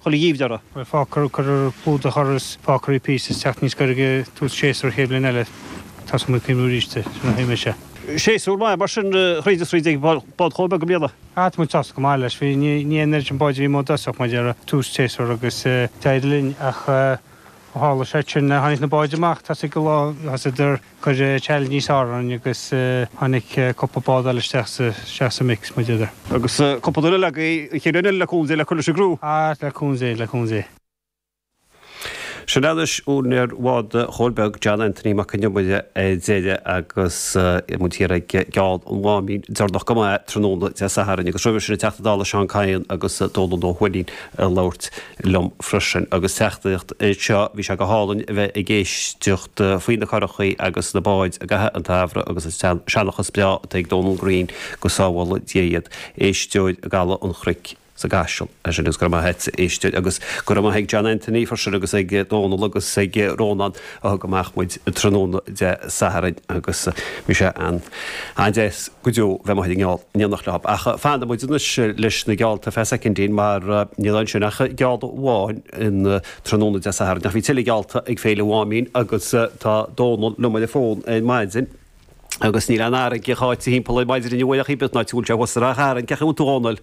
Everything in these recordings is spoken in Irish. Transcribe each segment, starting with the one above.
chuile gheimhreadh. Beidh fágtha cuirfear clúdach uirthi is fágfar í píosa is teacht níos gaire go tús séasúr an chéad bhliain eile. Tá's amuigh faoi arís duit, sin a thuigfidh mise. Séasúr maith mar sin thríd is thríd ag Bád Chóil Beag i mbliana. Ah, tá muid sásta go maith leis. Bhí, ní, ní raibh an oiread sin báid a bhí amuigh i dtosach, mar a déarfá, tús an tséasúir agus d'éirigh linn ach ó tharla seo sin tháinig na báid amach, thosaigh a lán, thosaigh idir, Chuir Charlie níos airde orainn agus tháinig cúpla bád eile isteach sa mix, mar a déarfá. agus cúpla duine lag, í ag iarraidh le cúnamh Dé le cur leis an gcriú. Á le cúnamh Dé, le cúnamh Dé. Sin anois úinéir Bhád Chóil Beag, John Anthony Mac Con Iomaire, ar deireadh agus muid thiar ag geall an Mháimín deireanach go maith tráthnóna Dé Sathairn. Agus roimhe sin an Teachta Dála Seán Kyne agus Dónall Ó hUaithnín ag labhairt liom freisin agus teachtaireacht seo. Bhí sé go hálainn a bheith ag éisteacht faoi na curachaí agus na báid i gcaitheamh an tsamhraidh agus an seanchas breá atá ag Donal Green, go sábhála Dia iad, éisteoir i gCaladh an Chnoic sa gCaiseal. Sin agus go raibh maith a't, a éisteoir, agus go raibh maith ag John Anthony freisin agus ag Donal agus ag Rónán. a thug amach muid tráthnóna Dé Sathairn agus bhí sé an, an-deas go deo bheith amuigh ag an ngeall in éineacht leo. Ach fanfaidh muid anois leis na geallta ar feadh soicindín mar níl ansin ach geall amháin an tráthnóna Dé Sathairn. Ach bhí tuilleadh geallta ag Féile Mháimín agus tá Dónal liom ar an bhfón ar maidin agus níl an fharraige cháite thimpeall air ar maidin inniu ach oiread, mar go bhfuil sé thuas i Ráth Chairn, cén chaoi a bhfuil tú a Dhónaill?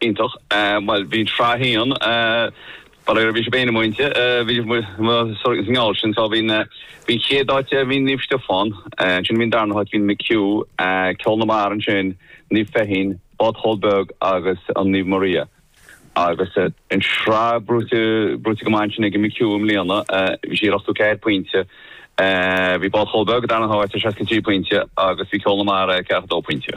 Iontach. Bhuel, bhí Sraith 1, faraor, bhí sé féin bainteach, bhí sé sa ngeall sin, so bhí an chéad áit, bhí Naomh Stiofán, ansin bhí an darna háit, bhí McHugh, Ceol na Mara ansin, Naomh Feichín, Bád Chóil Beag agus an Naomh Maria. Agus an tsraith gnóite, gnóite go maith ansin ag an McHugh i mbliana, bhí sí ar ochtó ceathair pointe, bhí Bád Chóil Beag sa darna háit ar seasca trí pointe agus bhí Ceol na Mara ar ceathracha dó pointe.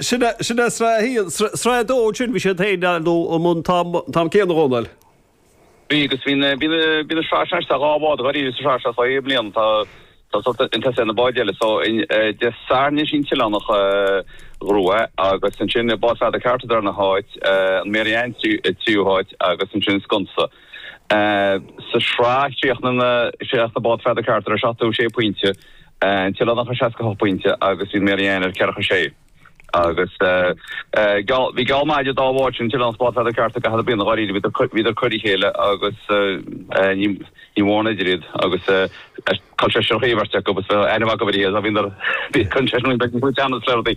Sin é sraith a haon. Sraith a dó ansin, bhí siad féin nó ar bun an t-am céanna, a Dhónaill? Bhí, agus bhí an tsraith sin idir an dhá bhád dháiríre sa sraith seo sa bhliain. Tá siad chun tosaigh ar na báid eile. So, Dé Sathairn anois í an tOileánach a ghnóthaigh, agus ansin Bád Pheadair Carter darna háit, an Mary Anne tríú háit, agus ansin Sconsa. Sa tsraith chríochnaigh, chríochnaigh Bád Pheadair Carter ar 76 pointe, an tOileánach ar 68 pointe agus bhí Mary Ann ar ceathracha sé. Agus bhí geall maith idir an dá bhád sin, an tOileánach is Bád Pheadair Carter i gcaitheamh na bliana dháiríre, bhíodar ag cur a chéile agus ní raibh mórán eidir iad agus col seisear an bheirt acu agus bheadh aithne mhaith acu ar a chéile, bhíodar, bhí an seisear sin ag baint ag cur teannais le rudaí.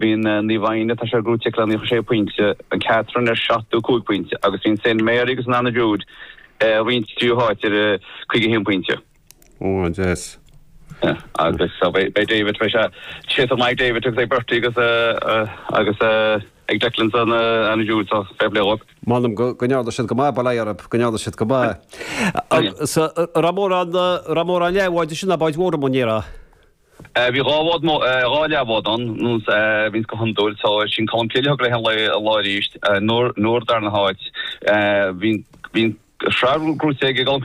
Bhí an Naomh Áine, tá sé gnóite aici le 96 pointe, an Catherine ar 75 pointe agus bhí an Saint Mary agus an Anna Jude ag roinnt tríú háit ar 51 pointe. Ó, an deas. Agus beidh David, beidh sé séidte amach ag David agus ag Bertie agus agus ag Declan sa Anna Jude so fair play dhóibh. M'anam go ndearna siad go maith, bail orthu, go ndearna siad go maith. Agus raibh mórán, raibh mórán leathbháid ansin, nach báid mhóra, mo, níor. Bhí dhá bhád, dhá leathbhád ann, nó bhíonn go hiondúil, so sin Colm Cille thug léi an lá arís, Nóra, Nóra dara háit, bhí an, bhí an tsraith gnóite ag Colm Cille.